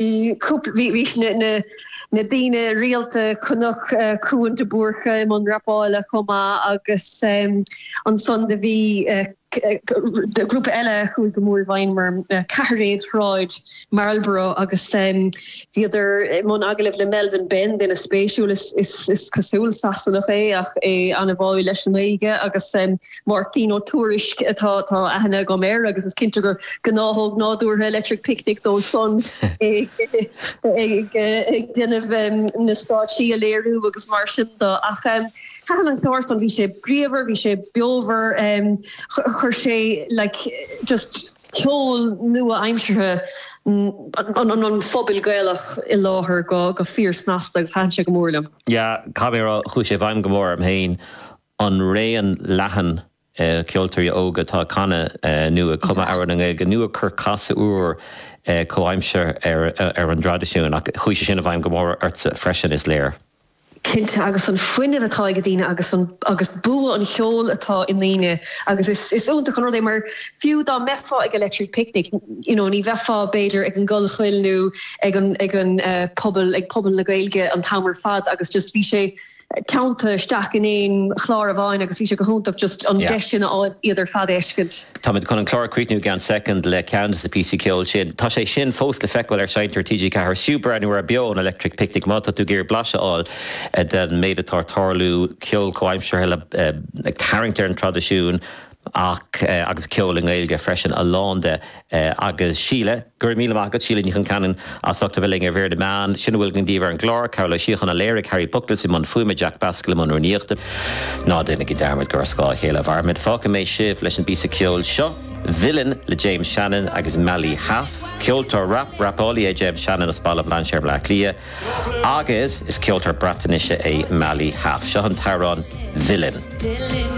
Bhí na daoine rialta, chonac Cuan de Búrca i mBun rapála chomh maith agus ansan do bhí grúpa eile a chuaigh go mór i bhfeidhm orm, Ceathairéad Shráid Marlborough agus bhíodar i mbun agallamh le Melvin Benn, duine spéisiúil, is cosúil Sasanach é ach é an-bháúil leis an nGaeilge agus Máirtín Ó Tuairisg atá aithne agam air agus is cinnte gur gnáthóg nádúrtha Electric Picnic dó san ag déanamh na stáitsí a léiriú agus mar sin de ach thaithin an clár san bhí sé bríomhar, bhí sé beomhar chuir sé like just ceol nua aimseartha an phobail Gaelach i láthair go fíor snasta agus thaithin sé go mór liom. Yeah, caithfidh mé a rá chuaigh sé i bhfeidhm go mór orm féin an raon leathan ceoltóirí óga atá ag canadh nó ag cumadh amhrán i nGaeilge nó ag cur casadh úr comhaimseartha ar an dtraidisiún. Ach chuaigh sé sin i bhfeidhm go mór ortsa freisin, is léir. Cinnte, agus an fuinneamh atá ag daoine agus an agus bua an cheoil atá i ndaoine agus is is iontach an rud é mar fiú dá mbeifeá ag Electric Picnic you know ní bheifeá b'fhéidir ag an gCollchoill nó ag an ag an puball ag Puball na Gaeilge an t-am ar fad agus just bhí sé ceangailte isteach in aon chlár amháin agus bhí sé go hiontach just an deis sin a fháilt iad ar fad a fheiscint. Táimid chun an clár a chríochnú i gceann soicind le ceann de na píosaí ceoil sin. Tá sé sin fós le feiceáil ar Sheinnteoir TG4, is fiú breathnú ar Beo ón Electric Picnic má tá tú ag iarraidh blaiseadh a fháil den méid atá ag tarlú, ceol comhaimseartha ag tarraingt ar an traidisiún, ach agus ceol i nGaeilge freisin, a lán de agus Síle. Go raibh míle maith agat Síle Ní Choincheannain as ucht a bheith linn ar Mhír na Meán. Sin a bhfuil againn daoibh ar an gclár. Cearbhall Ó Síocháin a léirigh Harry Bookless i mbun fuaime, Jack Baskin i mbun rúnaíochta. Ná déanaigí dearmad gur ar scáth a chéile a mhairimid. Fágfaidh mé sibh leis an bpíosa ceoil seo, Villain le James Shannon agus Mali Hâf. Ceoltóir rap, rapálaí é James Shannon as Baile Bhlainséir i mBleá Cliath agus is ceoltóir Breatnaise é Mali Hâf. Seo an t-amhrán Villain.